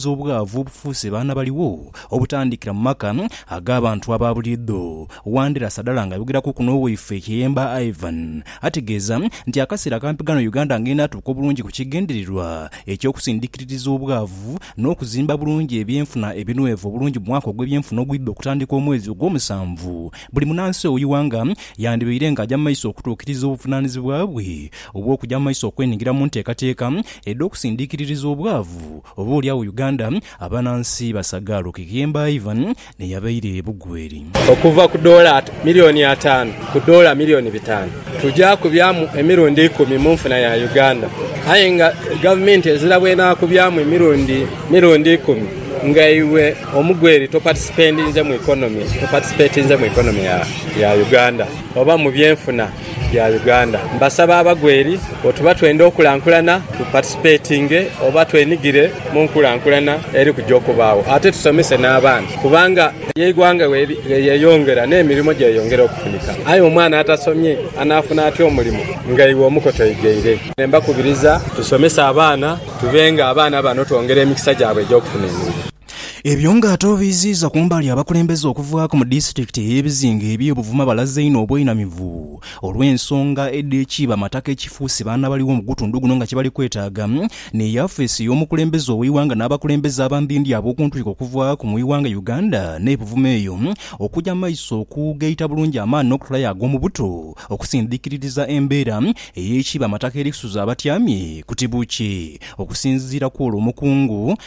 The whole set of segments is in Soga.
okuziyiza obwavu obufuuse baana baligho obutandikira mu maka ag'abantu aba buliidho. Wandera Sadala ng'ayogeraku ku n'owaife Kiyemba Ivan ategeeza nti akaseera akampi ghano Uganda ng'enaatuuka obulungi ku kigendererwa eky'okusindikiririza obwavu n'okuzimba bulungi ebyenfuna ebinwevu obulungi mu mwaka ogw'ebyenfuna ogwidha okutandika omwezi ogwomusanvu buli munansi ow'ighanga yandibaire ng'aja mu maiso okutuukiriza obuvunanizibwa bwe obw'okuja mu maiso okwenhigira mu nteekateeka edh'okusindiikiririza obwavu, oba oli agho Uganda abanansi basagaala okughemba Ivan n'eyabaire Bugweri. Okuva ku doola milioni ataanu ku doola milioni bitaanu, tuja kubyamu emirundi ikumi mu nfuna ya Uganda. Aye nga gavumenti ezira bw'enaakubyamu emirundi mirundi ikumi nga iwe Omugweri topatisipendinze mu economy, topatisipetinze mu economy ya Uganda oba mu byenfuna. ya Uganda. Mbasaba abagwa eri oti oba twenda okulankulana tu participatinge oba twenigire mu nkulankulana eri kuja okubaagho ate tusomese n'abaana kubanga eighanga bwelyeyongera n'emirimo gyeyongera okufunika aye omwana atasomye anaafuna atya omulimo nga iwe omuko toigeire. Mbakubiriza tusomese abaana tube nga abaana bano twongera emikisa gyabwe egy'okufuna emirimu. Ebyo nga ate obiiziiza ku mbali abakulembeze okuvaaku mu disitulikiti ey'ebizinga eby'e Buvuma balaze einho obweinamivu olw'ensonga edh'ekiiba mataka ekifuuse baana bali w'omugutundhu guno nga kyebali kwetaaga ni yafeesi ey'omukulembeze ow'eighanga n'abakulembeze abandhindhi ab'okuntwiko okuvaaku mu ighanga Uganda n'e Buvuma eyo okuja mu maiso okugaita bulungi amaani n'okutolayo ag'omubuto okusindhikiririza embeera ey'ekiiba mataka erikusuza abatyamye ku tibuukye Okusinziira kw'olwo omukungu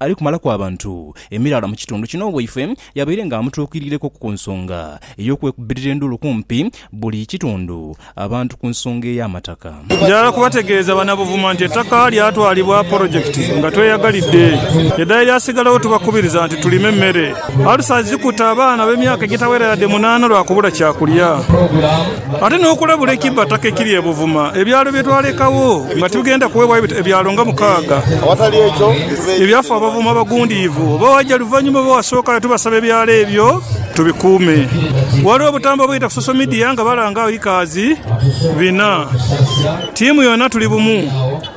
Ali kumalaku abantu emiraala mu kitundu kino owaifwe yabaire nga amutuukiriireku ku nsonga ey'okwekubirira enduulu kumpi buli kitundu abantu ku nsonga ey'amataka. Njagala kubategeeza Bannabuvuma nti ettaka lyatwalibwa polojekiti nga tweyagalidde edala eryasigalawo tubakubiriza nti tulime emmere. Alusa zikuta abaana ab'emyaka egitawera yadde munaana lwa kubula kyakulya. Ate n'okulabula ekibataka ekiri e Buvuma, ebyalo bye twalekagho nga tibigenda kuweebwayo ebyalo nga mukaaga. Ebyafa Abavuma abagundiivu oba waja luvannyuma oba wasookayo tubasaba ebyalo ebyo tubikuume. Waliwo obutamba obuyita ku social media nga balanga agho Ikaazi bina. Ttiimu yona tuli bumu.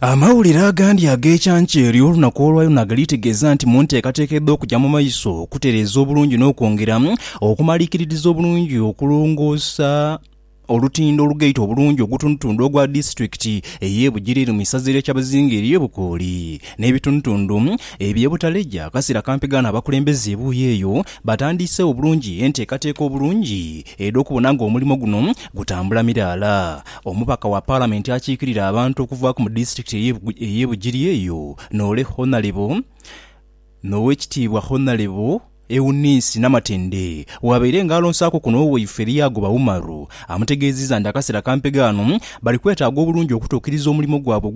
Amawulire agandi ag'ekyanka eri olunaku olwa Yona galitegeeza nti mu nteekateeka edh'okuja mu maiso okutereeza obulungi n'okwongera okumalikiririza obulungi okulongoosa olutindo olugaita obulungi ogutundutundu ogwa disitulikiti ey'e Bugiri eri mu isaza erya Kyabazinga ery'e Bukooli n'ebitundutundu eby'e Butaleja akasera kampi ghano abakulembeze ebuuyi eyo batandiisewo bulungi enteekateeka obulungi edh'okubona ng'omulimo guno gutambula miraala Omubaka wa Palamenti akiikirira abantu okuvaaku mu disitulikiti ey'e Bugiri eyo, Noole Honalebo n'Owekitiibwa Honalebo Eunice Namatende bw'abaire nga alonsaaku kuno owaife Lyagoba Umaru amutegeezizza nti akaseera kampega ano bali kwetaaga obulungi okutuukiriza omulimo gwabwe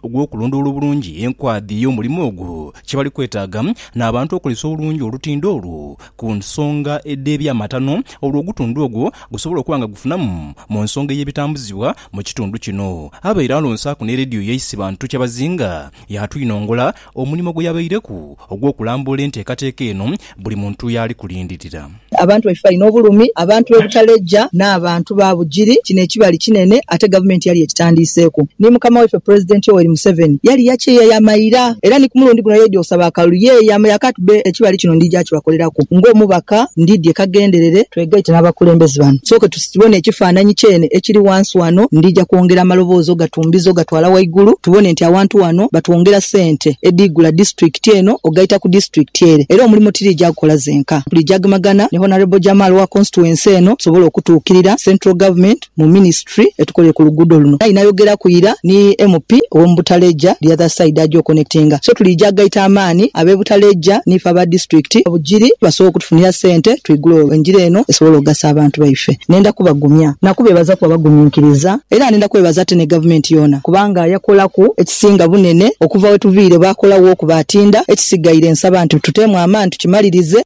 ogw'okulondoola obulungi enkwadha ey'omulimo ogwo kye bali kwetaaga n'abantu okozesa obulungi olutindo olwo ku nsonga edh'eby'amatano olwo ogutundu ogwo gusobole okuba nga gufunamu mu nsonga ey'ebitambuzibwa mu kitundu kino. Abaire alonsaaku ni leediyo ya Isibantu Kyabazinga yaatwinongola omulimo gwe yabaireku ogw'okulambula enteekateeka eno buli muntu yaali kulindirira. Abantu baife balina obulumi, abantu b'e Butaleja n'aba. bantu ba Bugiri, kino ekibali kinene ate gavumenti yali yekitandiiseeku. Ni mukama waife Pulezidenti Yoweri Museveni yali yakyeya yamaira era ni ku mulundi guno yaidhi okusaba akalulu. Ye yamanya kati be ekibali kino ndija kibakoleraku. Ng'omubaka ndidhie kaghenderere. Twegaite n'abakulembeze bano tusooke tubone ekifaananyi kyene ekiri ghansi ghano. Ndija kwongera amaloboozi ogatumbiza ogatwala ghaigulu tubone nti awantu wano batwongera sente edhiigula District. disitulikiti eno ogaita ku disitulikiti ere era omulimo tiri gya kukola zenka. Tulijagemagana ni Honourable Jamal wa constituency eno tusobole okutuukirira Central Government mu Ministry etukolere ku luguudo luno. Aye nayogeraku ira ni MP ow'omu Butaleja the other side aje okonectinga. So tulija gaita amaani ab'e Butaleja n'ife aba disitulikiti e Bugiri basobole okutufunira ssente twigule olwo engira eno esobole ogasa abantu baife. Nenda kubagumya na kubeebaza kuba baguminkiriza. Era nenda kwebaza ate ni Gavumenti yoona kubanga yakolaku. Singa bunene okuva wetuviire baakola wo okuba atinda, ekisigaire nsaba nti tuteemu amaani tukimalirize.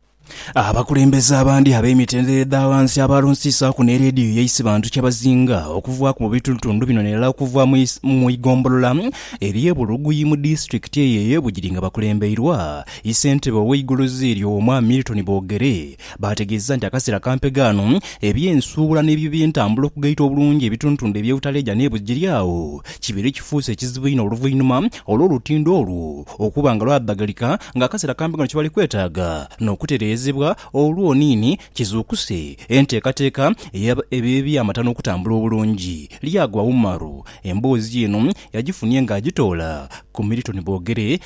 Abakulembeze abandi ab'emitendera edha ghansi abaalonsiisaaku ni leediyo ya Isibantu kyebazinga okuvaaku mu bitundutundu bino nairala okuva mu igombolola ery'e Buluguyi mu disitulikiti eyo ey'e Bugiri nga bakulembeirwa Isentebe ow'eiguluzi eryo Omwami Milton Bogere Baategeezezza nti akaseera kampe ghano eby'ensuubula n'ebyo by'entambula okugaita obulungi ebitundutundu eby'obutaleeja n'e Bugiriawo kibeere kifuuse ekizibu inho oluvainhuma olw'olutindo olwo okuba nga lwabbagalika nga akaseera kampe ghano kyebali kwetaaga n'okutereezebwa olwo niini kizuukuse enteekateeka ey'eby'amatano okutambula obulungi. Lyagwa Umaru emboozi eno yagifunye ng'agitoola ku Milton Bogere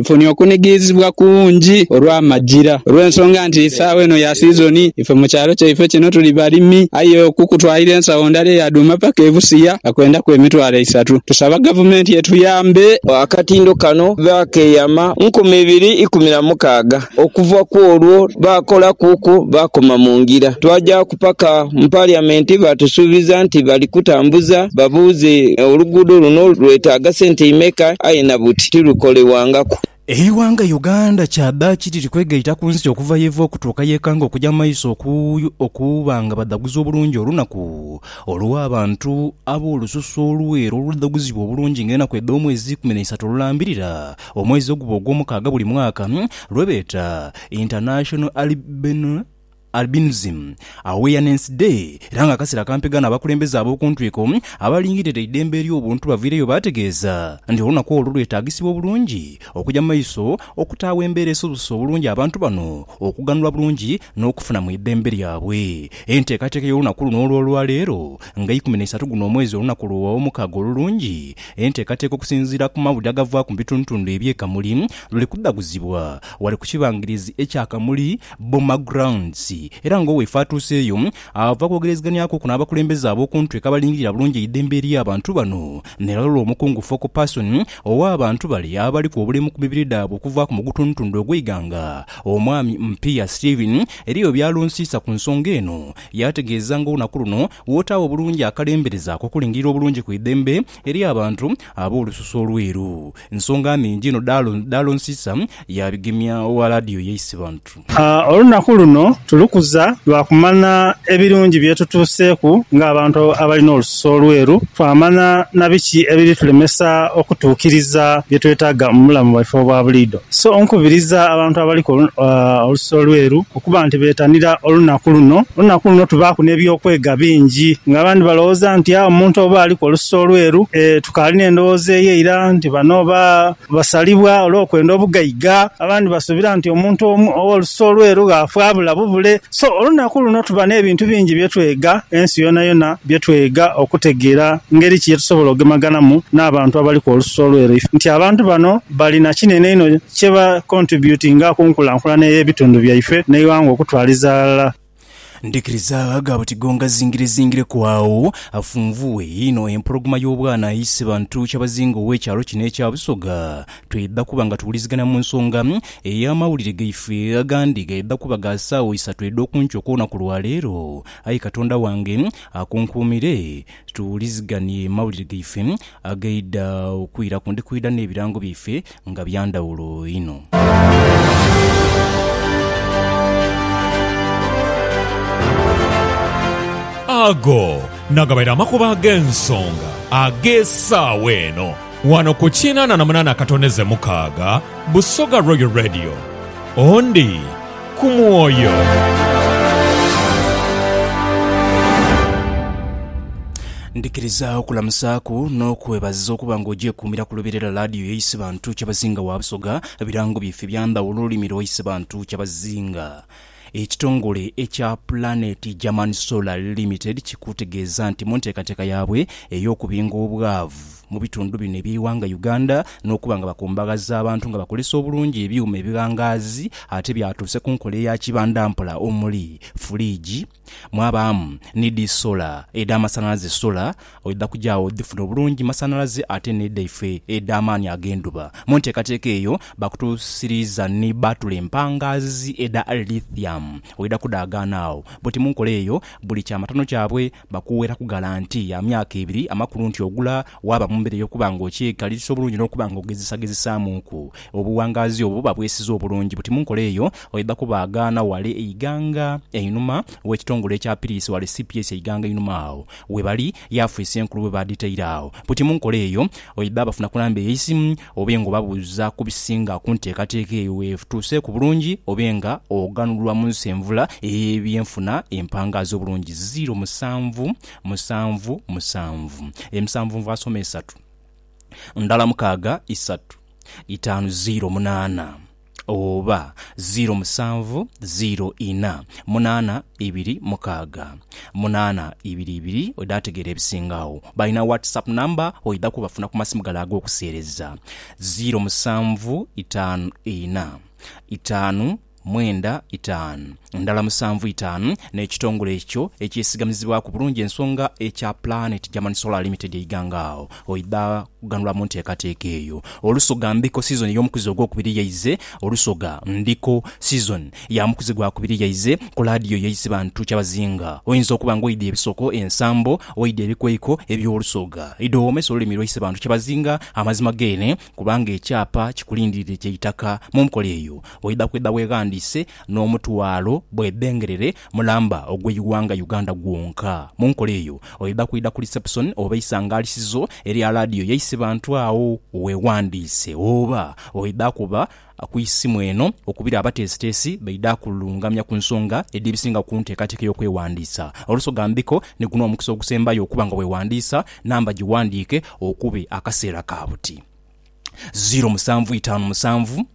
Nfunye okunighirizibwa kungi olw'amagira, olw'ensonga nti eisaawa eno ya sizoni, ife mu kyalo kyaife kino tuli balimi. Aye okukutwalira ensawo ndala eya dhuuma paka e Busia kakwendaku emitwalo eisatu. Tusaba Gavumenti etuyambe. Akatindo kano baakeeyama nkumi ibiri ikumi na mukaaga. Okuva ku olwo baakolakuku baakoma mu ngira. Twajaaku paka mu Paliamenti baatusuubiza nti bali kutambuza babuuze oluguudo luno lwetaaga sente imeka aye na buti. tirukolebwangaku. Eighanga Uganda kyadhaaki liri kwegaita ku nsi okuva yeva okutuuka yekanga okuja mu maiso okuba nga badhaguza obulungi olunaku olw'abantu ab'olususu olweru oludhaguzibwa obulungi nga enaku edh'omwezi eikumi n'eisatu olulambirira omwezi oguba ogw'omukaaga buli mwaka lwebeeta International Albino Albinism, Awareness Day, era nga akaseera kampega n'abakulembeze ab'okuntwiko abalingirira eidembe ery'obuntu baviireyo baategeeza nti olunaku olwo lwetaagisibwa obulungi okugya mu maiso okutaagho embeera esobozesa obulungi abantu bano okughanula bulungi n'okufuna mu idembe lyabwe. Enteekateeka y'olunaku luno olw'olwaleero nga ikumi n'eisatu guno omwezi olunaku Lw'omukaaga olulungi, enteekateeka okusinziira ku mawulire agavaaku mu bitundutundu eby'e Kamuli luli kudhaguzibwa wale ku kibangirizi ekya Kamuli Boma Grounds era nga oweefe atuuseeyo ava kwogerezeghanyaku ku n'abakulembeze ab'oku ntweka abalingirira bulungi eidhembe ery'abantu bano n'eralola omukungu focal person ow'abantu bale abaliku obulemu ku mibiri dhaabwe okuva ku mugutundutundu ogw'eighanga Omwami Mpiya Stephen eriyo by'alonsiisa ku nsonga eno yaategeeza nga olunaku luno w'otaagho obulungi akalembereza ak'okulingirira obulungi ku idhembe ery'abantu ab'olususu olweeru. Nsonga nhingi inho dhaalonsiisa yaabigemya owa laadiyo yaise bantu. Olunaku luno tulukuza lwa kumanha ebirungi bye tutuuseeku ng'abantu abali n'olususu olweru, twamanha na biki ebiri tulemesa okutuukiriza bye twetaaga mu bulamu bwaife obwa buliidho. So nkubiriza abantu abaliku olususu olweru Okuba nti betanira olunaku luno, olunaku luno tubaaku n'eby'okwega bingi. Nga abandi balowooza nti aa omuntu oba aliku olususu olweru, ee tukaali n'endhowooza eyo eira nti bano oba basalibwa olw'okwenda obugaiga. Abandi basuubira nti omuntu ow'olususu olweru ghaafa abula bubule. So, olunaku luno tuba n'ebintu bingi bye twega, ensi yonayona bye twega okutegeera ngeri ki ye tusobola ogemeghanamu n'abantu abaliku olususu olweru. Nti abantu bano bali na kinene inho kye ba contributinga ku nkulankulana ey'ebitundu byaife n'eighanga okutwaliza ghalala. Ndhikiriza agho abatigo nga zingirezingireku agho afunvughe inho empologoma y'obwana aise bantu kyabazinga ow'ekyalo kino ekya Busoga. Twidha kuba nga tuwulizigana mu nsonga ey'amawulire gaife agandi gaidha kuba ga saagho isatu edh'okunkyo okw'olunaku lwa leero. Ayi Katonda wange akunkuumire. Tuwuliziganie mawulire gaife agaidha okwiraku. Ndi kwidha n'ebirango byaife nga bya ndhawulo inho. Ago nagabaire amakubo ag'ensonga ag'esaawa eno wano ku kinaana na munaana akatondeze mukaaga Busoga Royal Radio. Ondi. ku mwoyo. Ndhikiriza okulamusaaku n'okwebaza okuba nga ogyekuumira ku luberera laadiyo ya Isebantu Kyabazinga wa Busoga. Birango byaife bya ndhawulo olulimi lwa Isebantu Kyabazinga. Ekitongole ekya Planet German Solar Limited kikutegeeza nti mu nteekateeka yaabwe ey'okubinga obwavu, mu bitundu bino eby'eighanga Uganda n'okuba nga bakumbaghaza abantu nga bakozesa obulungi ebyuma ebighangaazi ate byatuuse ku nkola eya kibandampola omuli furiigi mwabaamu ni dhi sola edh'amasanhalaze sola oidha kujaagho odhifuna obulungi masanhalaze ate n'edhaife edh'amaani ag'endhuba mu nteekateeka eyo bakutuusiriiza ni bbaatule empangaazi edha lithium oidha kudhaagaana agho buti mu nkola eyo buli kyamatano kyabwe Bakuweraku galanti ya myaka ebiri amakulu nti ogula waaba mu mbeera ey'okuba nga okyekaliriza obulungi n'okuba nga ogezesagezesaamuuku. Obuwangaazi obwo buba bwesize obulungi buti mu nkola eyo oidha kubaagaana wale eighanga einhuma w'ekitongole ekyapiriisa wale cps eighanga einhuma agho webali, yaafisi enkulu bwe baadhitaire agho. Buti mu nkola eyo oidha bafunaku namba eyeisimu Obe nga obabuuza ku bisinga ku nteekateeka eyo weetuuseeku bulungi, obe nga oghanulwa mu nsi envula ey'ebyenfuna empangaazi obulungi ziiro musanvu, musanvu, musanvu, emisanvunvu asoma esatu, ndala mukaaga, isatu, itaanu ziiro munaana. oba ziiro musanvu ziiro inha munaana ibiri mukaaga munaana ibiri ibiri oidha ategeera ebisinga agho. Balina WhatsApp number oidha kubafuna ku masimu gale ag'okuseereza, ziiro musanvu itaanu inha itaanu mwenda itaanu ndhala musanvu itaanu n'ekitongole ekyo ekyesigamizibwaku bulungi ensonga ekya Planet German Solar Limited eighanga agho. Oidha kughanulwa mu nteekateeka eyo. Olusoga Ndiko sizoni y'omukuzi ogwokubiri yaize Olusoga Ndiko sizoni ya mukuzi gwa kubiri yaize ku laadiyo y'eisi bantu kyabazinga. Oinza okuba nga oidha ebisoko, ensambo, oidha ebikweiko eby'Olusoga. Idha owoomese olulimi lwaisi bantu kyabazinga amazima geene kubanga ekyapa kikulindiridde kya itaka. Mu nkola eyo, oidha kwidha weeghandiise n'omutwalo bwebengerere Mulamba ogw'eighanga Uganda gwonka. Mu nkola eyo, oidha kwidha ku lisepusoni oba eisangalisizo erya laadiyo yaisi bantu agho weewandiise oba oidha kuba ku isimu eno okubira abateesiteesi baidha kulungamya ku nsonga edh'ebisinga ku nteekateeka y'okwewandiisa. Olusoga mbiko ni guno omukisa ogusembayo okuba nga weewandiisa, namba giwandiike okube akaseera ka buti, ziiro musanvu itaanu musanvu.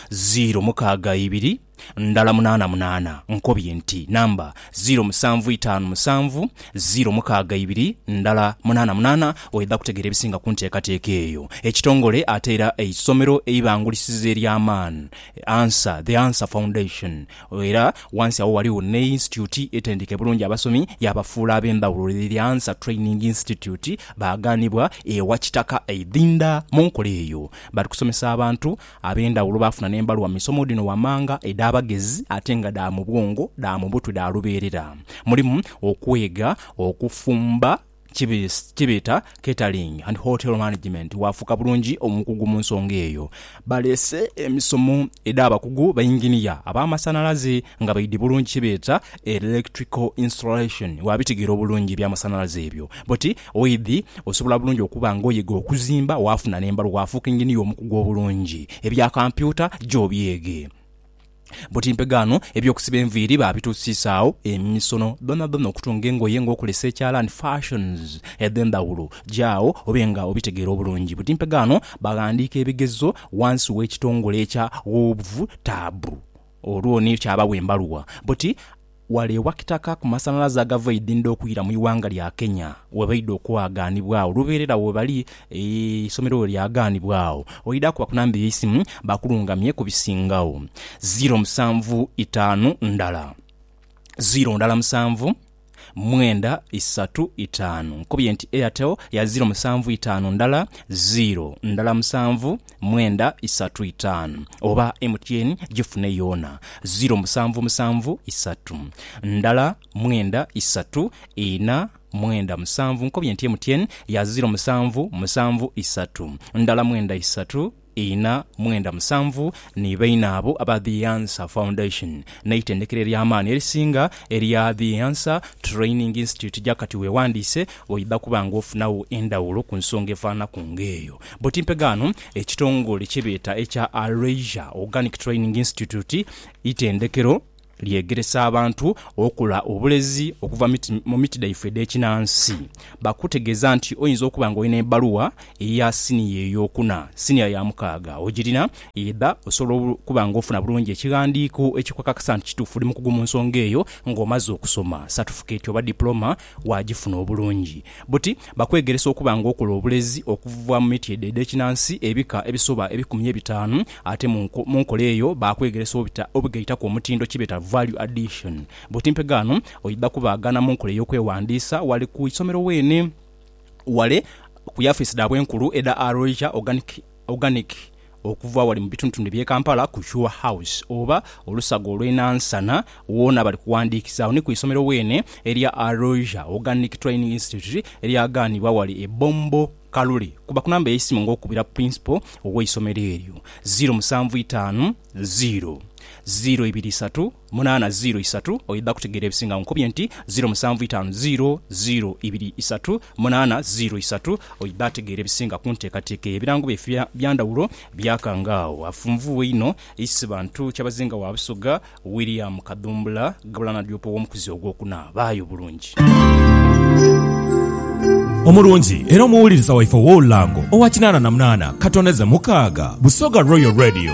ziiro mukaaga ibiri ndala munaana munaana, nkobye nti namba ziiro musanvu itaanu musanvu, ziiro mukaaga ibiri ndala munaana munaana, oidha kutegeera ebisinga ku nteekateeka eyo. Ekitongole ate era eisomero eibangulisiza ery'amaani Answer, The Answer Foundation era wansi agho ghaligho ne yinsityuti etendeka bulungi abasomi yaabafuula ab'endhawulo The The Answer Training Institute baaghanibwa ewa Kitaka eidhinda mu nkola eyo. Bali kusomesa abantu ab'endhawulo baafuna n'embalu wa misomo dhino wammanga edh'abagezi ate nga dha mu bwongo, dha mu butwe dha lubeerera. Mulimu okwega okufumba kye beeta catering and hotel management waafuuka bulungi omukugu mu nsonga eyo. Baleese emisomo edh'abakugu bayinginiya ab'amasanhalaze nga baidhi bulungi kye beeta electrical installation waabitegera obulungi eby'amasanhalaze ebyo bwoti Oidhi osobola bulungi okuba ng'oyega okuzimba, waafuna n'embalu waafuuka enginiya omukugu obulungi. Ebya kampyuta gya obyege. Buti mpegaano, eby'okusiba enviiri baabituusisaagho, emisono dhoonadhoona, okutunga engoye ng'okozesa ekyalaani, fashions edh'endhawulo, gyaagho obe nga obitegeera obulungi. Buti mpegaano, baghandiika ebigezo wansi w'ekitongole ekya Ghovtab olwo ni kyabawa embaluwa. Buti. Ghale ewa Kitaka ku masanhalaze agava eidhindha okwira mu ighanga lya Kenya webaidha okwaghanibwa agho lubeerera agho webali eisomero weryaghanibwa agho oidha kuba ku namba eyeisimu bakulungamye ku bisingagho ziro musanvu itaanu ndala ziro ndala musanvu mwenda isatu itaanu. Nkubye nti Airtel ya ziro musanvu itaanu ndala ziro ndala musanvu. mwenda isatu itaanu oba MTN gifune yoona ziro musanvu musanvu isatu ndala mwenda isatu ina mwenda musanvu nkobye nti MTN ya ziro musanvu musanvu isatu ndala mwenda isatu ina mwenda musanvu ni baine abo aba The Answer Foundation n'eitendekero ery'amaani erisinga erya The Answer Training Institute Jakati wewandiise oidha kuba nga ofunagho endhawulo ku nsonga efananaku nga eyo. Buti mpe ghano ekitongole kye beeta ekya Alesia Organic Training Institute, itendekero lyegeresa abantu okola obulezi okuva mu miti dhaife edh'ekinansi. Bakutegeeza nti oyinza okuba nga olina ebaluwa eya siniya ey'okuna, siniya ya mukaaga ogirina, oidha osobola okuba nga ofuna bulungi ekighandiiko ekikukakasa nti kituufu oli mukugu mu nsonga eyo ng'omaze okusoma satifikeeti oba dipuloma Waagifuna obulungi buti? Bakwegeresa okuba ng'okola obulezi okuva mu miti edho edh'ekinansi ebika ebisoba ebikumi ebitaanu. Ate mu mu nkola eyo baakwegeresa obita obugaitaku omutindo kye beeta value addition. Buti mpe ghano oidha kubaagana mu nkola ey'okwewandiisa ghale ku isomero weene, ghale ku yafiisi dhaabwe enkulu edha Aroija Organic. Organic okuva wali mu bitundutundu eby'e Kampala ku Sure House oba olusaga olw'e Nansana woona bali kuwandiikisaawo ni ku isomero weene erya Aroosia Organic Training Institute eryagaanibwa wali e Bombo Kalule. Kuba ku namba y'eisimu ng'okubira Principal ow'eisomero eryo, ziiro musanvu itaanu ziiro, ziiro ibiri isatu munaana ziiro isatu. Oidha kutegeera ebisinga nkubye nti ziiro musanvu itaanu ziiro, ziiro ibiri isatu. Munaana ziro isatu oidha ategeera ebisinga ku nteekateeka eyo. Ebirango byaife bya ndhawulo byakanga agho. Afunvughe inho Isibantu Kyabazinga wa Busoga, William Kadhumbula ghabula n'adyopa ow'omukuzi ogwokuna. Baayo bulungi. Omulungi era omuwuliriza waife ow'olulango owa kinaana na munaana ka toneze mukaaga, Busoga Royal Radio.